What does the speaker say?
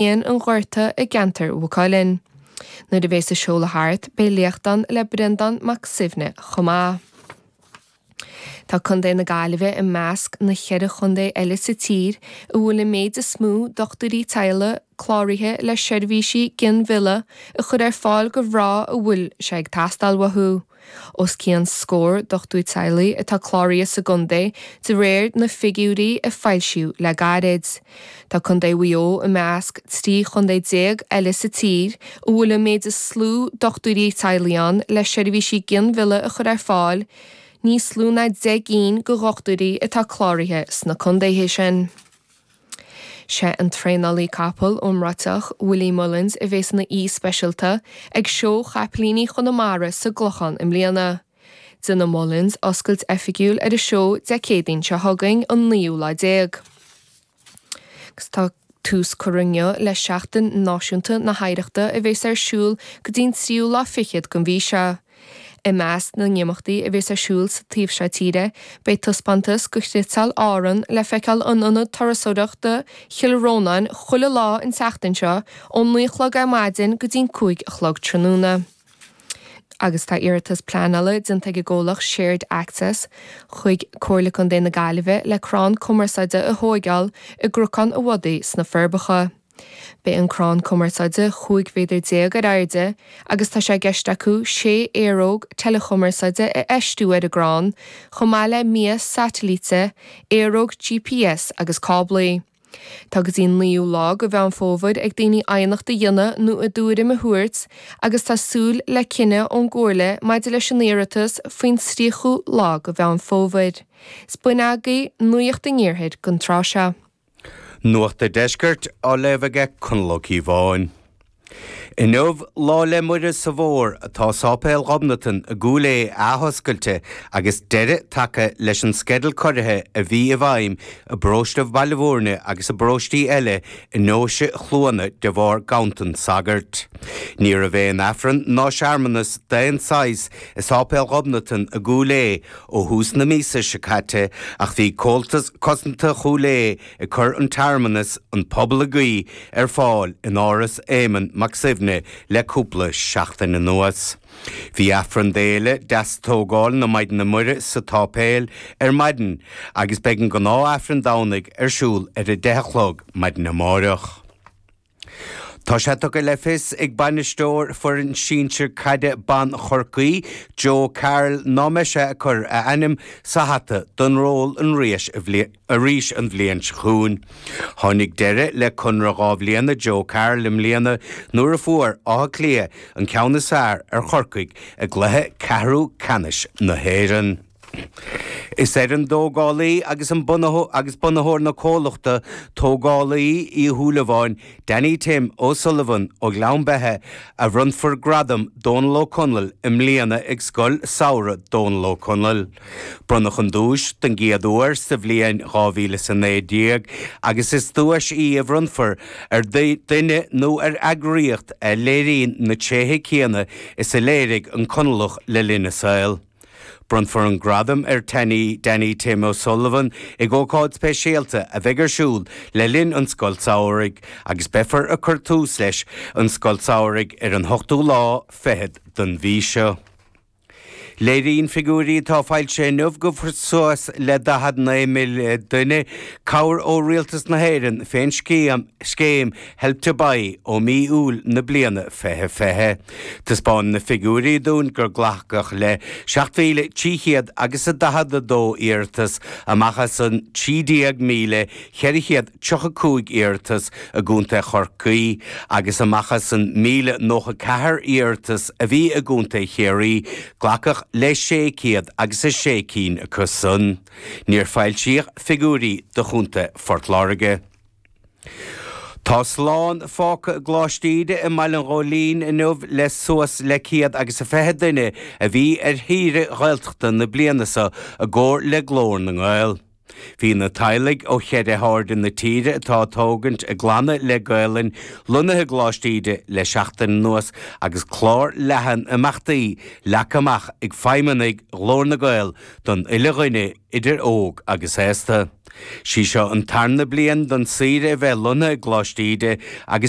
an Ghorta i gceantar Mhaigh Cuilinn. Nuair a bheas an seoladh thart, beidh léacht ann le Breandán Mac Suibhne chomh maith. Tá Contae na Gaillimhe i measc na cheithre chontae eile sa tír a bhfuil an méid is mó dochtúirí teaghlaigh cláraithe le seirbhísí ginmhillte a chur ar fáil do mhná a bhfuil sé ag teastáil uathu. Os cionn scór dochtúir teaghlaigh atá cláraithe sa gcontae de réir na figiúirí a foilsíodh le gairid. Tá contae Mhaigh Eo i measc 13 chontae eile sa tír a bhfuil an méid is lú dochtúirí teaghlaigh ann le seirbhísí ginmhillte a chur ar fáil, níos lú ná deich gcinn de dhochtúirí atá cláraithe sna contaetha sin. Sé an traenálaí capall iomráiteach Willie Mullins a bheas ina aoi speisialta ag Seó Chaipilíní Chonamara sa gClochán i mbliana. Déanfaidh Mullins oscailt oifigiúil ar an seó Dé Céadaoin seo chugainn, an naoú lá déag. Agus tá tús curtha inniu le Seachtain Náisiúnta na hOidhreachta a bheas ar siúl go dtí an tríú lá fichead den mhí seo. I measc na n-imeachtaí a bheas ar siúl sa taobh seo tíre, beidh taispeántas de chniotáil Árann le feiceáil in Ionad Turasóireachta Chill Rónáin chuile lá an tseachtain seo ón naoi a chlog ar maidin go dtí an cúig a chlog tráthnóna. Agus tá iarratas pleanála déanta ag an gcomhlacht Shared Access chuig Comhairle Contae na Gaillimhe le crann cumarsáide a thógáil i gCnocán a' Bhodaigh sna Forbacha. Beidh an crann cumarsáide 15 mhéadar ar airde agus tá sé i gceist acu sé aeróg teileachumarsáide a fheistiú ar an gcrann, chomh maith le mias satailíte, aeróg gps agus cáblaí. Tá go dtí an 9ú lá de Mheán Fómhair ag daoine aighneacht a dhéanamh nó a dtuairim a thabhairt agus tá súil le cinneadh ón gComhairle maidir leis an iarratas faoin 30ú lá de Mheán Fómhair. Is b'in agaibh nuacht an iarthair don tráth seo. Nuacht an Deiscirt á léamh aige Conall Ó Cíobháin. Inniu Lá 'le Muire sa bhFómhar tá Sáipéal Ghobnatan i gCúil Aodha athoscailte agus deireadh tagtha leis an sceideal ciorraithe a bhí i bhfeidhm i bparóiste Bhaile Mhúirne agus i bparóistí eile i nDeoise Chluana de bharr gantan sagairt. Ní raibh aon Aifreann ná searmanas d'aon tsaghas i Sáipéal Ghobnatan i gCúil Aodha ó thús na míosa seo caite ach bhí Comhaltas Cosanta Chúil Aodha ag cur an tsearmanas 'An Pobal ag Guí' ar fáil in Áras Éamon Mac Suibhne le cúpla seachtain anuas. Bhí Aifreann d'Fhéile Deastógáil na Maighdine Muire sa tsáipéal ar maidin agus beidh an gnáth-Aifreann Domhnaigh ar siúl ar a deich a chlog maidin amárach. Tá sé tugtha le fios ag bainisteoir foireann sinsir caide ban Chorcaí, Joe Carroll, ná mbeidh sé ag cur a ainm sa hata don ról arís an bhliain seo chugainn. Tháinig deireadh le conradh dhá bhliana Joe Carroll i mbliana nuair a fuair Áth Cliath an ceann is fearr ar Chorcaigh i gcluiche ceathrú ceannais na hÉireann. Is ar an dtógálaí agus agus bunaitheoir na comhlachta tógála Uí Shúilleabháin, Danny Tim O Sullivan ó Ghleann Beithe, a bhronnfar Gradam Dónall Ó Conaill i mbliana ag Scoil Samhraidh Dónall Ó Conaill. Bronnadh an duais don gcéad uair sa bhliain dhá mhíle is a naoi déag agus is duais í a bhronntar ar duine nó ar eagraíocht a léiríonn na tréithe céanna is a léirigh an Conallach le linn a saol. Bronnfar an gradam ar Danny Danny Tim O'Sullivan ag ócáid speisialta a bheidh ar siúl le linn an Scoil tSamhraidh agus beifear ag cur tús leis an Scoil tSamhraidh ar an ochtú lá fichead den mhí seo. Léiríonn figiúirí atá foilsithe inniu go bhfuair suas le 49 míle duine cabhair ó Rialtas na hÉireann fén scéim Help to Buy ó mhí Iúil na bliana 2020. Taispeánann na figiúirí dúinn gur glacadh le 7,300 agus a 42 iarratas amach as an 13,435 iarratas i gContae Chorcaí agus amach as an 1,094 iarratas a bhí i gContae Chiarraí, glacadh le 600 agus a sé cinn acu san. Níor foilsíodh figiúirí do Chontae Phort Láirge. Tá slán fágtha i gColáiste Íde i mBaile an Ghóilín inniu le suas le céad agus a fiche duine a bhí ar shaoire Ghaeltachta na bliana seo i gcomhar le Glór na nGael. Bhí na teaghlaigh ó cheithre hairde na tíre atá ag tógaint a gclanna le Gaelainn lonnaithe i gColáiste Íde le seachtain anuas agus clár leathan imeachtaí leagtha amach ag feidhmeannaigh Ghlór na nGael don uile dhuine idir óg agus aosta. Sí seo an tarna bliain don saoire a bheith lonnaithe i gColáiste Íde agus.